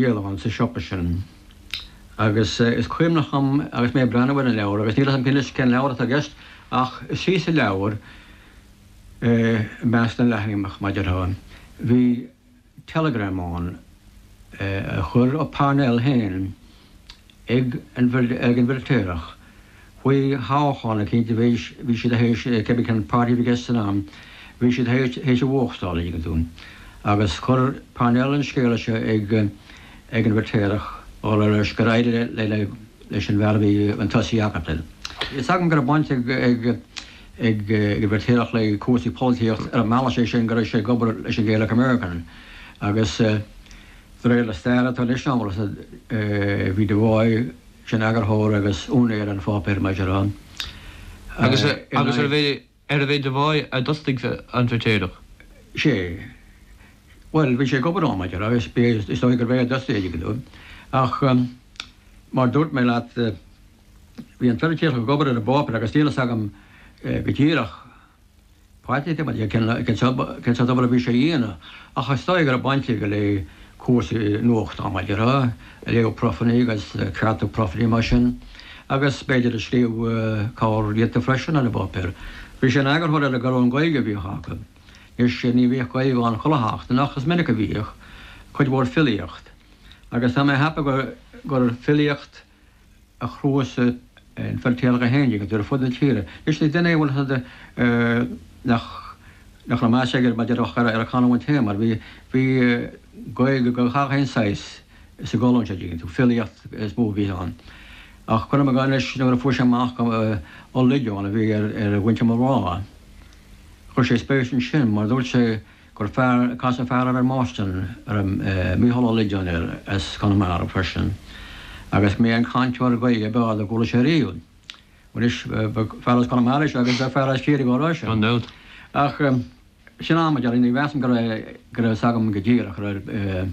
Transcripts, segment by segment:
Rialachán sa siopa sin. Agus is cuimhneach dhom agus mé ag breathnú ar an leabhar, agus níl fhios a'm anois cén leabhar atá i gceist, ach istigh sa leabhar i measc na leathanaigh mar a déarfá. Bhí teileagram ann a chuir Parnell féin ag ag an bhFeirtéarach, Faoi thoghchán eicínt a bhí siad théis cibé cén páirtí a bhí i gceist san am, bhí siad théis a bhuachtáil, a' dtuigeann tú agus chuir Parnell an scéala seo ag an bhFeirtéarach dhul ar loisc gur éirigh leis an bhfear a bhí chun tosaigh acu. Tá fhios agam go raibh baint ag ag ag an bhFeirtéarach le cúrsaí polaitíocht ar an mbealach sé sin go raibh sé ag obair leis an Gaelic American agus de réir na staire atá anois ann bhí Devoy sin eagarthóir agus úinéir an pháipéir mar a déarfá, agus agus arbh é arbh é Devoy a d'fhostaigh an Feirtéarach. sé. Bhuel, bhí sé ag obair ann mar a déarfá agus bhí is dóigh gurbh é a d'fhostaigh é, ach mar dúirt mé leat, bhí an Feiritéarach ag obair ar an bpáipéar agus níl fhios agam go díreach, páirtithe maidir le cén sórt obair a bhí sé a dhéanamh ach is dóigh go raibh baint aige le cúrsaí nuachta mar a déarfá léamh profannaí agus ceartú profannaí mar sin agus b'fhéidir ag scríobh corrphíosa freisin ar an bpáipéar. Bhí sé ina eagarthóir ar an gcolún Gaeilge a bhíodh acu. Anois ní bhíodh Gaeilge ann chuile sheachtain ach is minic a bhíodh, cuid mhór filíocht agus tá mé ag ceapadh gur filíocht a chnuasaigh an Feirtéarach é héin agus ar fud na tíre. Anois ní duine é a bhí ann nach nach raibh meas aige mar a déarfá ach ar a chanúint féin mar bhí bhí Gaeilge de gach aon saghas sa gcolún sé sin filíocht is mó a bhí ann ach cuirim i gcás anois nuair a fuair sé amach gur Ó Loideáin a bhí ar ar mhuintir mo mháthar chuir sé spéis ansin mar dúirt sé gur casadh fear air i mBoston, a raibh Micheál Ó Loideáin air as Conamara freisin, agus go mb'é an cainteoir Gaeilge ab fhearr dár chuala sé riamh. Anois b'fhear as Conamara é seo agus b'fhear as Ciarraí dhá rá sin. Ach sin mar a déarfá, ní mheasaim go raibh go raibh fhios agam go díreach go raibh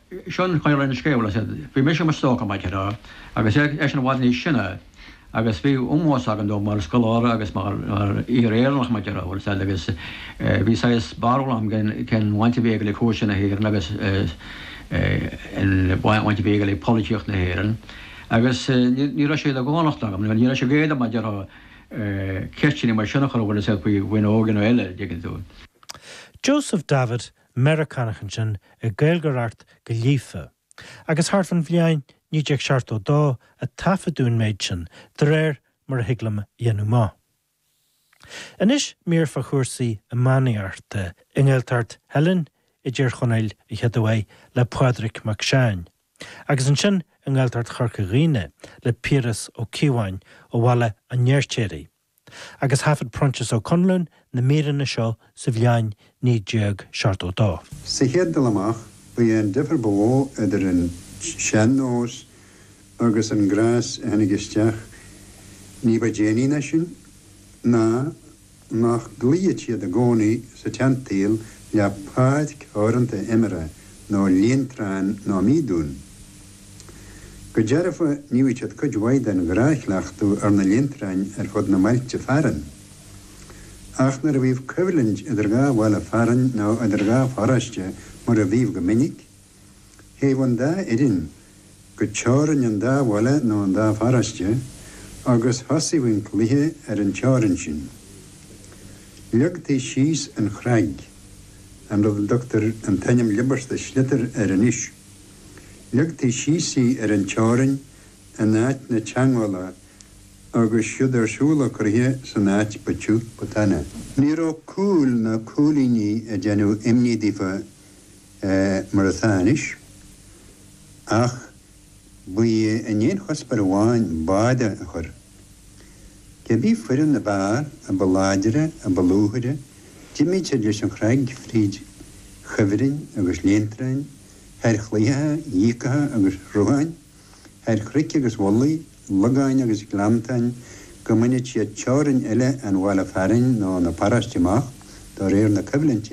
Seo an chaoi a raibh an scéal, is é Bhí mise i mo stócach, mar a déarfá, agus eisean i bhfad níos sine, agus bhí ómós agam dó mar scoláire agus mar fhíor-Éireannach, mar a déarfá is eile, agus bhí saghas barúil agam cén bhaint a bhí aige le cúrsaí na hÉireann agus an bhaint a bhí aige le polaitíocht na hÉireann, agus ní raibh sé de dhánacht agam, nó ní raibh sé go éasca, mar déarfá, ceisteanna mar sin a chur orthu, is é faoi Mhaigh Eo nó eile, a' dtuigeann tú. Joseph Davitt Meiriceánach ansin ag Gaeilgeoireacht go líofa, agus thart fán bhliain 1972 a taifeadadh an méid sin, de réir mar a thig liom a dhéanamh amach. Anois mír fá chúrsaí iománaíochta, i nGaeltacht Theilinn i dTír Chonaill a chéaduair le Pádraig Mac Seáin, agus ansin i nGaeltacht Chorca Dhuibhne le Piaras Ó Cíobháin ó Bhaile an Fheirtéaraigh. agus thaifead Proinsias Ó Conluain na míreanna seo sa bhliain 1972. Sa chéad dul amach, ba é an difear ba mhó idir an sean-nós agus an gnás a tháinig isteach ní ba déanaí ná sin ná nach gcloíodh siad i gcónaí sa tseansaol le páirc theoranta imeartha nó líontrán ná míodún. Go dearfa, níodh siad cuid mhaith den ghnáthchleachtadh ar na líontráin ar fud na mbailte fearainn. Ach nuair a bhíodh coimhlint idir dhá bhaile fearainn nó idir dhá pharóiste, mar a bhíodh go minic, théadh an dá fhoireann go teorainn an dá bhaile nó an dá pharóiste agus thosaíodh an cluiche ar an teorainn sin. Leagtaí síos an chnag, an rud a dtugtar an t-ainm liobasta sliotar air anois. Leagtaí síos í ar an teorainn in áit na teangmhála agus siúd ar siúl an cluiche san áit ba tiugh ba tanaí. Ní raibh cúil ná cúilíní ag déanamh imní daofa mar atá anois, ach ba é an t-aon chuspóir amháin báire a chur Cibé foireann ab fhearr, a ba láidre, a ba lúfaire, d'imíodh siad leis an chnag fríd chuibhrinn agus líontráin, thar chlaíocha, dhíogacha agus shrutháin, thar chnoic agus mhullaigh, logáin agus ghleanntáin, go mbaineadh siad teorainn eile an bhaile fearainn nó na paróiste amach do réir na coimhlinte.